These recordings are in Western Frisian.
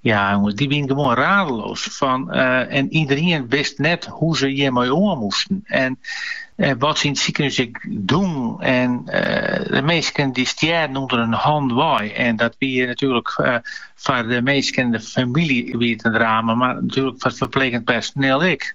Ja, dy wienen gewoan radeloos fan eh, en iederien wist net hoe't se hjirmei oan moesten. En eh, wat se yn it sikehûs ek dienen. En eh, de minsken die stjerden ûnder har hannen wei. En dat wie natuerlik eh, foar de minsken en de familie wie it in drama, mar natuerlik foar it ferpleegjend personiel ek.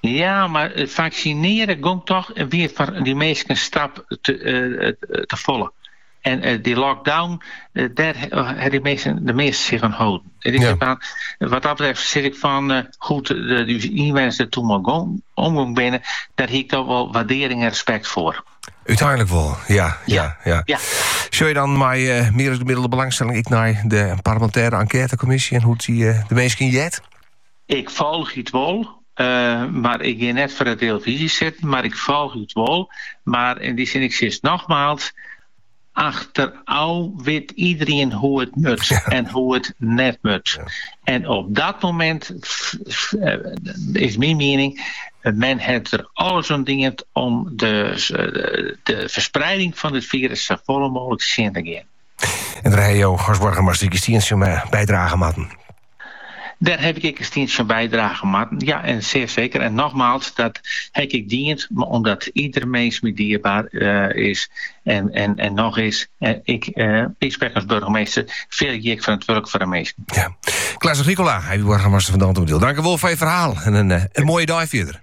Ja, mar faksinearje gong toch wer foar dy minsken in stap te folle. En dy lockdown, dêr ha dy minsken de measte sich oan holden. En wat dat betreft sis ik fan hoe't ús ynwenners der toen mei omgong binne, dêr hie ik toch wol waardearing en respekt foar. Uteinlik wol, ja. ja, ja. ja. Sjogge jo dan mei uh, meer as gemiddelde belangstelling ek nei de parlemintêre enkêtekommisje en hoe't dy uh, de minsken jet? Ik folgje it wol, mar ik gean net foar de televisie sitten, mar ik folgje it wol, mar yn dy sin, ik sis nogmaals, achterôf wit iederien hoe't it mat en hoe't it net mat. En op dat momint, is myn miening, men hat der alles oan dien om de ferspreiding fan dit firus safolle mooglik tsjin te gean. En dêr ha jo as boargemaster jo stientsje oan bydrage moatten. Dêr ha ik ek in stientsje oan bydrage moatten, ja en seer seker. En nogmaals, dat ha ik ek dien omdat ieder minske my dierbaar is en noch is. Ek, sprek ik as burgemeester, fier ik oan 't wurk foar de minsken. Ja. Klaas Agricola, boargemaster fan Dantumadiel. Tankewol foar jo ferhaal en in, in moaie dei fierder.